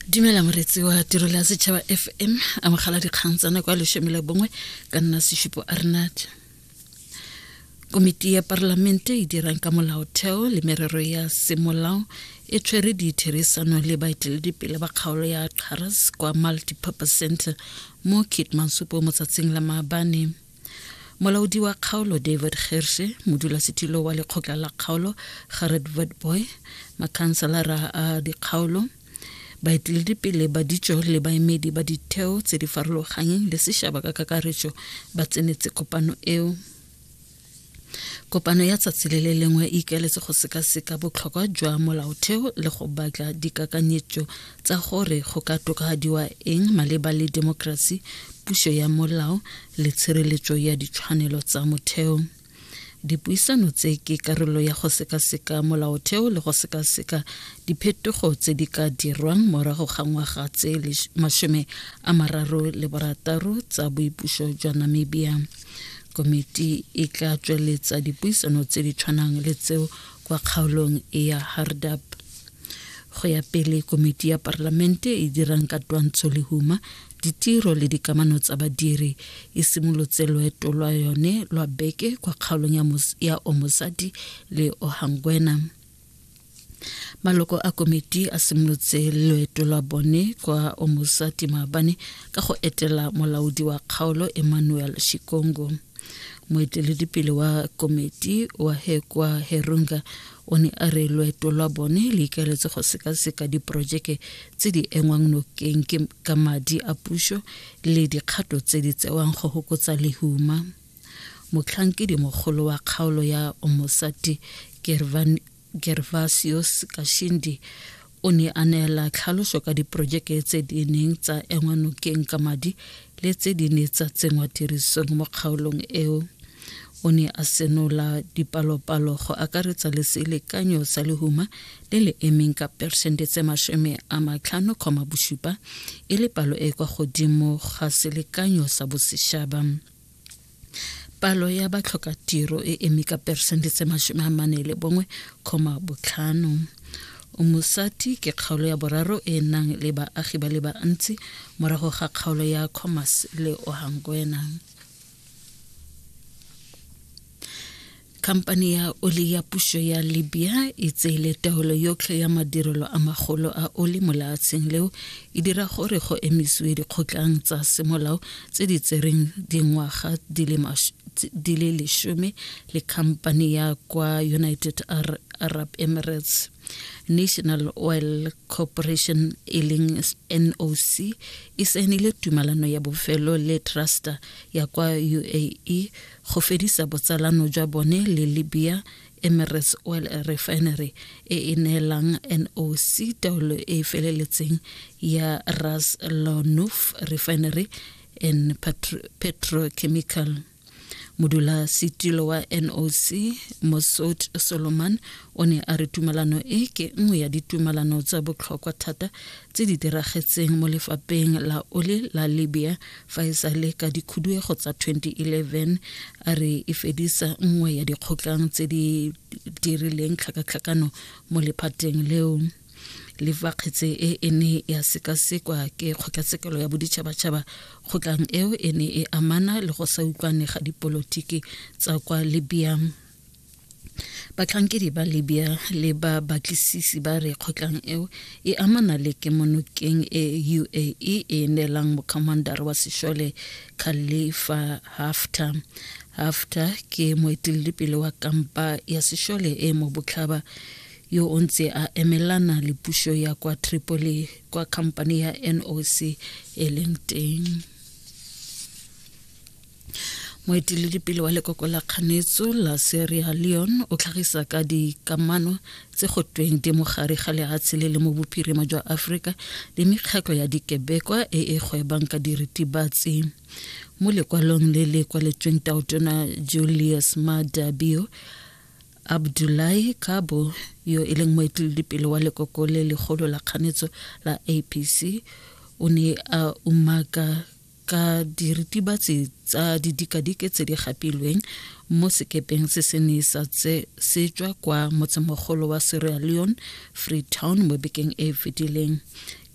dumela moretsi wa tirelo ya setšhaba fm amogela dikgang tsa nako ya leshome le bongwe ka nna sešupo arnat komiti ya parlamente e dirang ka molaotheo le merero ya semolao e tshwere ditherisano le baeteledipele ba kgaolo ya xaras kwa multipurpose center mo kitmansupo motsatsing la maabane molaodi wa kgaolo david gerse modulasetilo wa lekgotla la kgaolo gared vetboy makhanselara a dikgaolo baeteledipele ba ditso le baemedi ba ditheo tse di farologanyeng le sešaba ka kakaretso ba tsenetse kopano eo kopano ya tsatsi le le lengwe e ikaeletse go sekaseka botlhokwa jwa molaotheo le go batla dikakanyetso tsa gore go ka tokafadiwa eng maleba le demokrasi puso ya molao le tshireletso ya ditshwanelo tsa motheo dipuisano tse ke karolo ya go sekaseka molaotheo le go sekaseka diphetogo tse di ka dirwang morago ga ngwaga tse masome a mararo le borataro tsa boipuso jwa namibia komiti e tla tsweletsa dipuisano tse di tshwanang le tseo kwa kgaolong ya hardap go ya pele komiti ya parlamente e dirang ka twantsho lehuma ditiro le dikamano tsa badiri e simolotse loeto lwa yone lwa beke kwa kgaolong ya omosadi le ohangwena maloko a komiti a simolotse loeto lwa bone kwa omosati maabane ka go etela molaodi wa kgaolo emmanuel shikongo moeteledipele wa komiti wa hekwa herunga o ne a re loeto lwa bone le ikaeletse go sekaseka diporojeke tse di engwang nokeng ka madi a puso le dikgato tse di tsewang go hokotsa lehuma Motlhankedimogolo wa kgaolo ya Omosati Gervasios Kashindi o ne a neela tlhaloso ka diporojeke tse di neng tsa engwa nokeng ka madi le tse di ne tsa tsenngwa tirisong mo kgaolong eo o ne a senola dipalopalo go akaretsa le selekanyo sa lehuma le le emeng ka persente tse masome a matlhano kgoma bosupa e le palo e kwa godimo ga selekanyo sa bosešaba palo ya batlhokatiro e eme ka peresente tse masome a mane le bongwe kgoma botlhano mosati ke kgaolo ya boraro e nang le baagi ba le bantsi morago ga kgaolo ya commerce le ohangwena Khamphane ya oli ya pušo ya Libya e tseile taolo yotlhe ya madirelo a magolo a oli mo leatsheng leo e dira gore go emisiwe dikgotlang tsa semolao tse di tsereng dingwaga di le lesome le khamphane ya kwa United Arab Emirates National Oil Corporation e leng NOC e saenile tumalano ya bofelo le truster ya kwa UAE go fedisa botsalano jwa bone le libya emirates oil refinery e e neelang noc taolo e e feleletseng ya ras lanuf refinery and petrochemical modula setilo wa noc mosot solomon o ne a re tumalano e ke nngwe ya ditumalano tsa botlhokwa thata tse di diragetseng mo lefapheng la ole la libya fa e sa le ka dikhuduego tsa 2011 a re e fedisa nngwe ya dikgotlang tse di dirileng tlhakatlhakano mo lephateng leo le fa kgetse e e ne ya sekasekwa ke kgotlatshekelo ya boditšhabatšhaba kgotlang eo e ne e amana le go sa utlwane ga dipolotiki tsa kwa libya batlhankedi ba libya le ba batlisisi ba re kgotlang eo e amana le kemonokeng e uae e e neelang mokhamandara wa sešole khalifa hafter hafter ke moeteledipele wa kampa ya sešole e mo botlhaba yo o ntse a emelana le pušo ya kwa tripoli kwa khamphane ya noc e leng teng moeteledipele wa lekoko la kganetso la seria leon o tlhagisa ka dikamano tse go tweng di mogare ga leatshe le le mo bophirima jwa aforika le mekgatlho ya dikebekwa e e gwebang ka diritibatsi mo lekwalong le le kwaletsweng taotona julius madabio abdulahi kabo yo e leng moeteledipele wa lekoko le legolo la kganetso la apc o ne a umaka ka diritibatsi tsa didikadike tse di gapilweng mo sekepeng se se ne sa tse se tswa kwa motsemogolo wa sierra leone freetown mo bekeng e e fetileng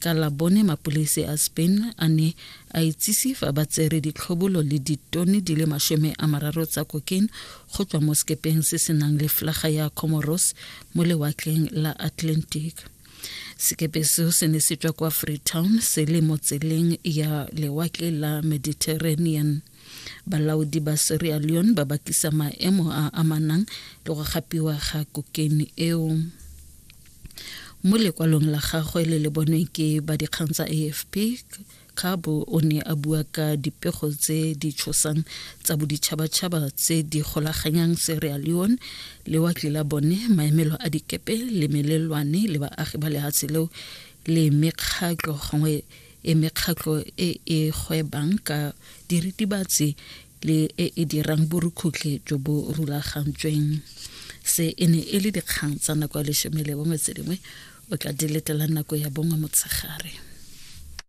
ka la bone mapolese a spain a ne a itsise fa ba tsere ditlhobolo le ditone di le masome a mararo tsa kokene go tswa mo sekepeng se se nang le flaga ya comoros mo lewatleng la atlantic sekepe seo se ne se tswa kwa freetown se le mo tseleng ya lewatle la mediterranean balaodi ba sierra leone ba bakisa maemo a amanang le go gapiwa ga kokeni eo mo lekwalong la gagwe le le bonweng ke ba dikgang tsa afp Kgabo o ne a bua ka dipego tse di tshosang tsa boditšhabatšhaba tse di golaganyang Sierra Leone le wa Tlilabone, maemelo a dikepe le melelwane le baagi ba lehatshe leo le mekgatlho gongwe e mekgatlho e e gwebang ka diritibatsi le e e dirang borukhutlhe jo bo rulagantsweng. Se e ne e le dikgang tsa nako ya lesome le bongwe tse dingwe o tla di letela nako ya bongwe motshegare.